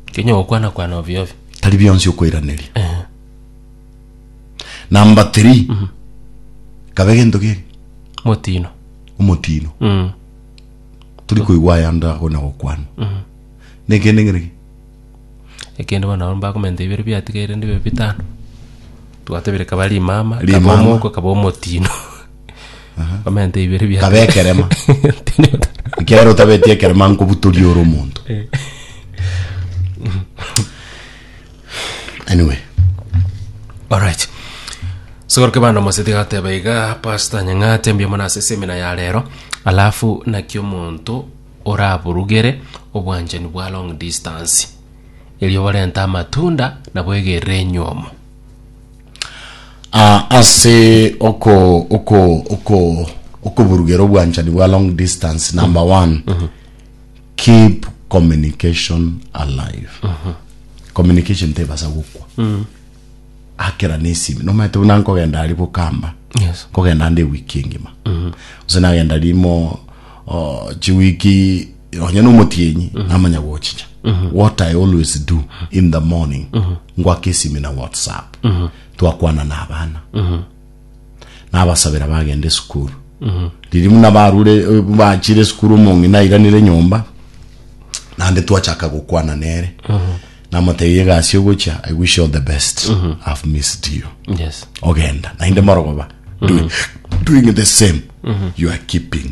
Kenya ogokwana-kwana ovio ovio. Tari bionsi okoiraneria. Eeh. Number three, kabe gento keri? Motino. Omotino. Mm. Tori koigwa aya ande ago na gokwana. Mm. Nekende ng'ere ki? Ekende bono nabo mbakomenta ibere biatigaire ndibe bitano. Twatebire kaba rimama, kaba Rimama. omoko, kaba omotino. Omenta ibere bia Kabe ekerema. ekiagera otabeti ekerema nkobutoria ore omonto anyway Alright. Sogoroke bana moseti gateba iga pastor nyang'ate mbia mona ase semina ya rero alafu naki omonto oraburugere obwanchani bwa long distance erio barente amatunda nabo egerere enywomo Ah, ase oko oko oko okuburugera obwanchani bwa long distance number one keep communication alive communication tebasa gokwa akera nesimi nomaete buna nkogenda ari bukamba Yes. nkogenda nde wiki engima gose nagenda rimo oh, chiwiki onye nomotienyi namanya gochicha what i always do in the morning ngwaka esimi na whatsapp twakwana na abana nabasabera bagenda esukuru riri buna barure eh, bachire esukuru omongi nairanire nyomba nande twachaka gokwana nere namotebi egasi ogocha i wish you all the best i've missed you yes ogenda nainde morogoba doing, doing the same you are keeping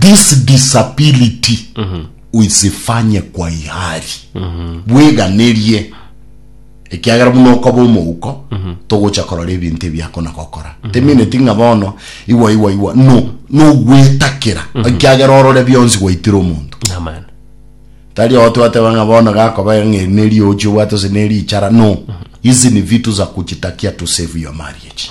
This disability oisifanye kwa ihari bweganerie ekiagera buna okoba omouko togocha korora ebinto ebiakona gokora temineti ng'a bono iwa iwa iwa no nogwetakera ekiagera orore bionsi gwaitire omonto Amen. tari ogo twateba ng'a bono gakoba ng'eri neri ochi obwate ase neri ichara no hizi ni vitu za kujitakia to save your marriage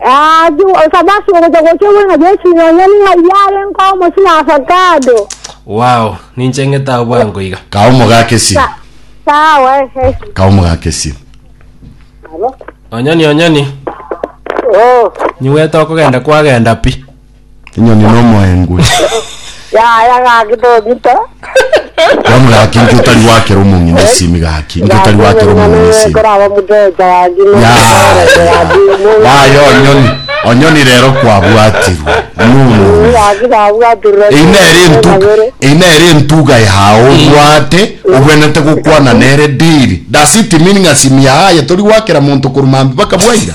Agwo Sabato ogocha gocha igoro na Yesu ime onye ning'ai biare nko omosi na avocado. Wow, ninche ng'ete ao bwango iga. Kaa omogaka esiri. Sa- Sawa ehe. Kaa omogaka esiri. Onyoni onyoni, Oh. nyiwete okogenda kwagenda pi. Enyoni nomoengwe. Yaya gaki togita. Bono gaki inki otari gwakera omong'ina esimi gaki? Inki otari gwakera omong'ina esimi? Koraba omoteja gaki. Yaya onyoni. Onyoni rero kwabwatirwe. Nunu. Gaki nabwatirwe. Eyi nere entuga. Eyi nere entuga yao obwate. Obwenete gokwana nere daily. Does it mean ng'a simi yaye tori gwakera monto korwa mambia baka bwaira?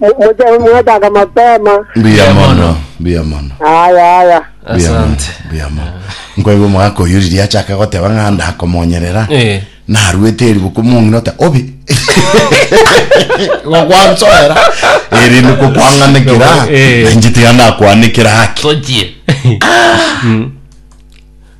Moche mwetaka mapema. Mbuya mono, mbuya mono. Aya aya. Mbuya mono, Asante. mbuya mono. Nkoigwa omogaka oyo riria achaka goteba ng'a ndakomonyerera. Eh. Narwete eribuku omong'ina ota obe. Gokwansoera. Erinde kokwanganekera. Eh. Nainche tiga ndakwanekera haki. Tochie.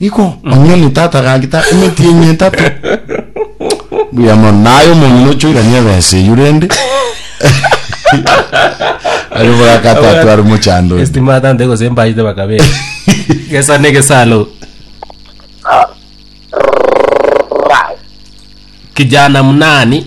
Iko onye omotata agagita emeti eye etato, buya mono, na aye omong'ina ochoirania ebesa eyio rende aria obwakato atware mochando oyo. Estima atante gose mbaite bakabere. Gesa ne gesalo. Kijana mnani?